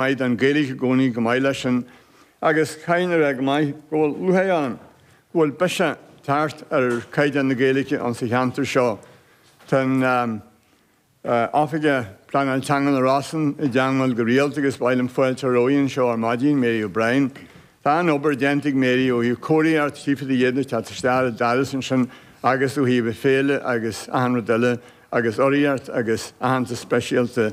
Mhaith an Ghaeilge i gcónaí, go maith leis an agus caighdeán a bheith go maith, go bhfuil feabhas ann, go bhfuil biseach tagtha ar caighdeán na Gaeilge ann sa cheantar seo. Tá an Oifigeach Pleanála Teanga sna Rosann i dteangmháil go rialta agus ba mhaith liom fáilte a chur roimpi anseo ar maidin, Mary O'Brien. Tá an-obair déanta ag Mary ó thaobh comharthaíocht chífead de dhéanamh ag teacht isteach le d'aireas ansin agus ó thaobh an Fhéile agus achan rud eile agus urraíocht agus aitheantas speisialta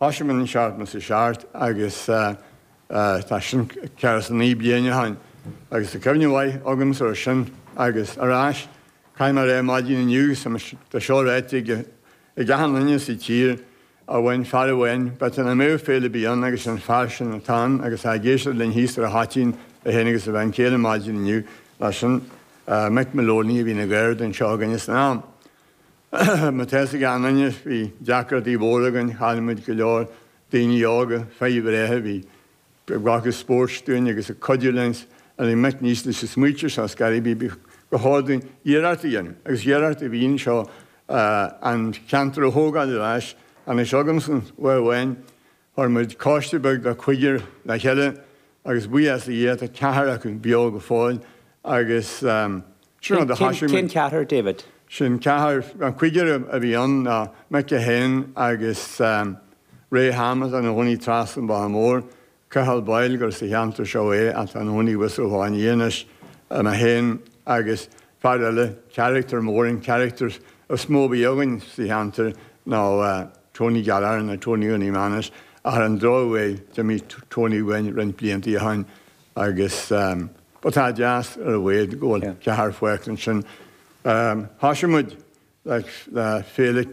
Thosaigh an seachtó a seacht agus tá sin daichead is naoi bliana ó shin agus tá cuimhne mhaith agamsa ó sin agus ar ais. Caithfidh mé a rá, maidin inniu, tá sé ráite ag achan duine sa tír a bhain fear amháin, but an ainm ar féile a bhí ann agus an fear sin atá ann agus tá ag éisteacht linn thíos ar an Choitín é féin agus a bhean chéile maidin inniu, mar sin, Mick Moloney a bhí ina MC ar an seó againne san am. Má tá fhios ag achan duine, is bhí deacrachtaí móra againn, chaill muid go leor daoine óga, fir bhreátha a bhí ag glacadh páirt dúinn agus ag cuidiú linn a bhí muid thíos leis sa smaoitigh muid, thiocfadh go mb'fhearr dúinn iarracht a dhéanamh agus iarracht a bhí ann seo an ceantar a thógáil ar ais. Anois agamsa, uair amháin, Chuir muid coiste beag de chúigear le chéile agus buíochas le Dia tá ceathar acu beo go fóill agus sin mar a thoisigh muid. Cén ceathar, David? Sin ceathar, an cúigear a bhí ann ná McGeehan agus Ray atá ina chónaí trasna an bhóthair mhóir, Cathal Boyle gur as an cheantar seo é ach tá ina chónaí i bhfus i nGaoth Dobhair anois, Emma Sheáin agus fear eile, carachtar mór, an carachtar is mó a bhí againn sa cheantar ná. Tony Gallagher nó Tony Eoghainí Manus ar an drochuair d'imigh Tony uainn roinnt blianta ó shin agus but tá deas ar a laghad go bhfuil ceathrar fágtha ansin. Thosaigh muid le féile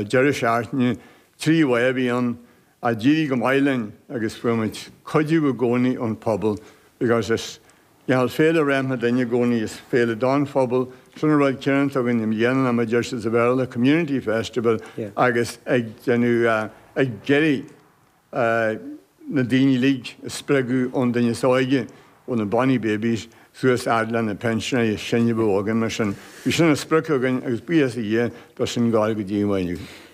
deireadh seachtaine trí lá a bhí ann a d'éirigh go maith linn agus fuair muid cuidiú i gcónaí ón phobal because is Go bhfuil féile, féile na ndaoine i gcónaí, is féile don phobal, sin an rud ciarann tá againn leis an ainm, mar a déarfá sa Bhéarla, Community Festival, agus ag déanamh, ag iarraidh na daoine uilig a spreagadh, ón duine is óige, ó na Bonny Babies suas fhad le na pensioners is sine a bhí againn, mar sin, bhí sin mar sprioc againn agus buíochas le Dia, tá sin ag gabháil go dtí an mhaidin inniu.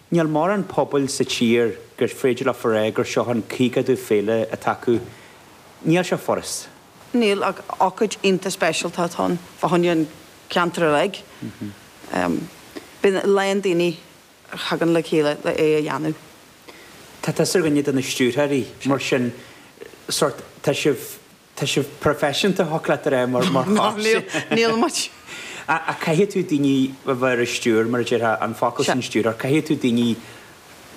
Níl mórán pobail sa tír gur féidir leo a rá gur seo an caogadú féile atá acu. Níl sé furast. Níl ach ócáid iontach speisialta atá ann fá choinne an ceantar uilig. Bíonn a lán daoine a thagann le chéile le é a dhéanamh. Tá tusa ar dhuine de na stiúrthóirí, mar sin sórt tá sibh. Tá sibh proifisiúnta, shochleatar é mar chás. Níl muid. Ach caithfidh tú daoine a bheith ar an stiúir, mar a déarfá, an focal sin stiúrthóir. Caithfidh tú daoine,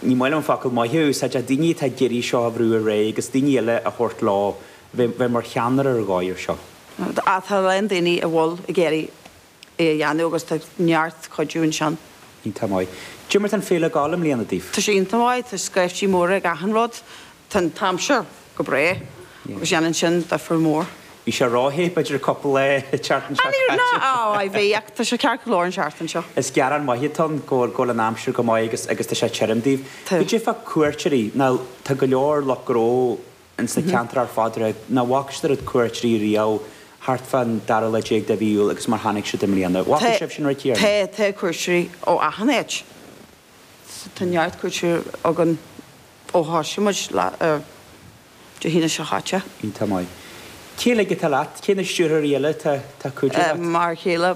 ní maith liom an focal maith a úsáid, ach daoine atá ag iarraidh seo a bhrú ar aghaidh agus daoine eile a thabhairt leo, bheith mar cheannaire ar dhóigh ar seo. Tá a lán daoine a bhfuil ag iarraidh é a dhéanamh agus tá neart cuidiú ansan. Iontach maith. Cad é mar tá an fhéile ag gabháil i mbliana daoibh? Tá sé iontach maith, tá scaiftí móra ag achan rud, tá an t-aimsir go breá agus dhéanann sin difear mór. Bhí sé ró-the, b'fhéidir an cupla lá an tseachtain seo caite. Ná á bhí ach tá sé ceart go leor an seachtain seo. Is gearán maith atá ann go bhfuil an aimsir go maith agus tá sé tirim daoibh. I dtaobh cuairteoirí, ná tá go leor lucht gnó ins na ceantair ar fad ag rá nach bhfaca siad oiread cuairteoirí riamh thart fán dara lá déag de mhí Iúil agus mar tháinig siad i mbliana. Bhfaca sibh sin, a Thríona? Tá cuairteoirí ó achan áit. Tá neart cuairteoirí againn ó thosaigh muid Dé hAoine seo chaite. Iontach maith. Cé uilig atá leat? Cé na stiúrthóirí eile atá ag cuidiú leat? M'fhear céile,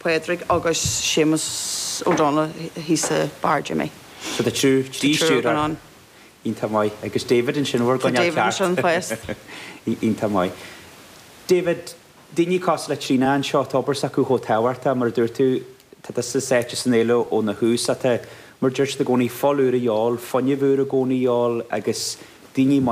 Pádraig agus Séamus O'Donnell thíos i Bar Jimmy. So tá triúr, trí triúr stiúrthóir. againn ann. Iontach maith. Agus David ansin, bhur So gcoinneáil David ceart. ansin first. Iontach maith. David, daoine cosúil le Tríona anseo, tá obair s'acu chomh tábhachtach, mar a dúirt tú, tá tusa sáite san fhéile óna thús ach tá, mar a deir siad i gcónaí, fuil úr a dhíobháil, fuinneamh úr i gcónaí a dhíobháil agus daoine maithe.